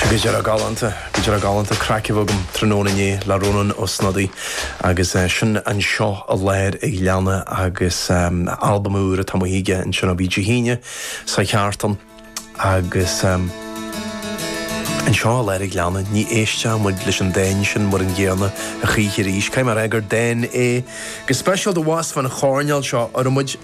Go díreach galánta, go díreach galánta. Craic a bhí agam tráthnóna inné le Rónán Ó Snodaigh agus sin anseo i lár an ghleanna agus albam úr atá amuigh aige ansin ó bhí Dé hAoine seo chuaigh thart ann agus anseo i lár an ghleanna ní éistfidh muid leis an dán sin mar an gcéanna a choíche arís. Caithfidh mé a rá gur dán é go speisialta abhus fán choirnéal seo a raibh muid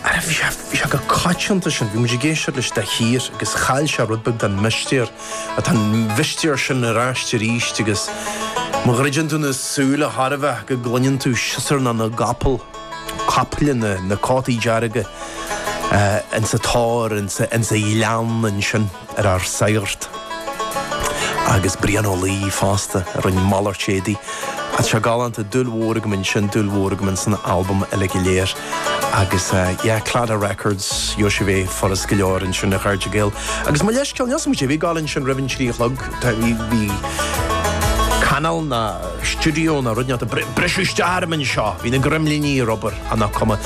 Ara bhí sé, bhí sé chomh coitianta sin, bhí muid ag éisteacht leis de shíor agus chaill sé rud beag den mhistéir, ach tá an mhistéir sin ar ais aríst agus má dhruideann tú na súile chóir a bheith go gcluineann tú siosarnach na gcapall, caiple na na cótaí dearga, eh, insa tor, insa, insa ghleann ansin. ar ár sagart agus Brian Ó Laoi fosta a rinne malairt éadaí. Tá sé galánta, dúil mhór agam ansin, dúil mhór agam ins an albam eile go léir agus yeah, Claddagh Records, gheobhaidh sibh é furast go leor ansin a chairde Gael. Agus mo leithscéal, níl a fhios agam cad é a bhí ag gabháil ansin roimh an trí a chlog, tá, bhí, bhí cainéal nó stiúideo nó rud inteacht ag briseadh isteach orm anseo, bhí na greimliní ar obair, ach nach cuma.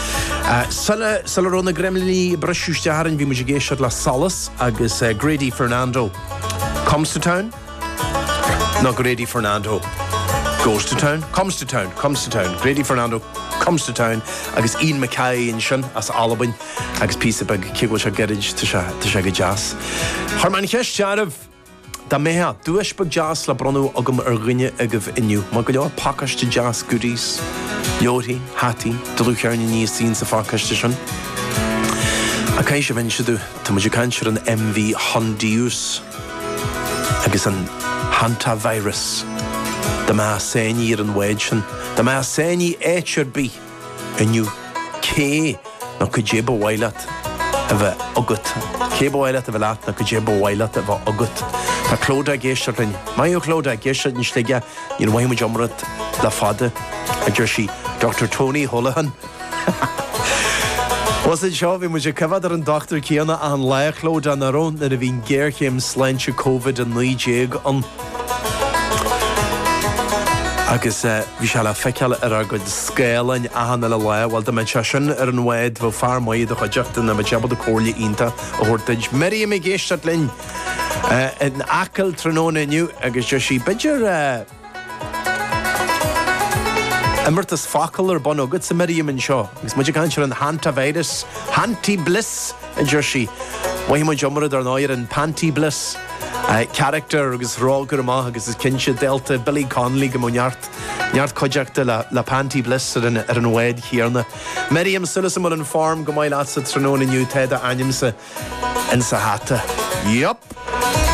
Sula, sula raibh na greimliní ag briseadh isteach orainn bhí muid ag éisteacht le Solas. agus Grady Fernando comes to town nó Grady Fernando goes to town, comes to town, comes to town, Grady Fernando comes to town agus Ian McKay ansin as Albain agus píosa beag, cé go bhfuil sé gairid, tá sé go deas. Chuir mé an cheist oraibh. Dá mbeadh duais beag deas le bronnadh agam ar dhuine agaibh inniu, maith go leor pacáiste deas goodies, leabharthaí, hataí, dlúthcheirníní thíos insa phacáiste sin. Ach caithfidh sibh inse domh, tá muid ag caint ar an MV Hondius agus an Hantavirus. Dá mbeifeá sáinnithe ar an bhád sin, dá mbeifeá sáinnithe in áit ar bith, Inniu, cé nó cad é ba mhaith leat a bheith agat? Cé ba mhaith leat a bheith leat nó cad é ba mhaith leat a bheith agat? Tá Clodagh ag éisteacht linn. Maith thú, a Chlodagh, ag éisteacht linn i Sligeach, níor mhothaigh muid iomrá ort le fada, a deir sí. Doctor Tony Holohan. Bhuel, anseo, bhí muid ag coimheád ar an dochtúir céanna achan lá, a Chlodagh, nach raibh, nuair a bhí an ghéarchéim sláinte Covid-19 ann. Agus bhí sé le feiceáil ar ár gcuid scáileáin achan uile lá. Bhuel, dá mbeadh sé sin ar an bhád, bheadh fear maith i do chuideachta, nó bheadh sé ábalta comhairle iontach a thabhairt duit. Miriam ag éisteacht linn in Acaill tráthnóna inniu agus deir sí, b'fhéidir imeartas focal ar bun agatsa, Miriam, anseo agus muid ag caint ar an Hantavirus, Hanti Bliss! a deir sí. Bhain muid iomrá, dar ndóigh, ar an Panti Bliss. Carachtar agus rógaire amach agus is cinnte dálta Billy Connolly go mbeadh neart cuideachta le Panti Bliss ar an bhfód chéanna. Mary, tá súil agam go bhfuil an form go maith leatsa tráthnóna inniu, tá d'ainmsa insa hata. Yup!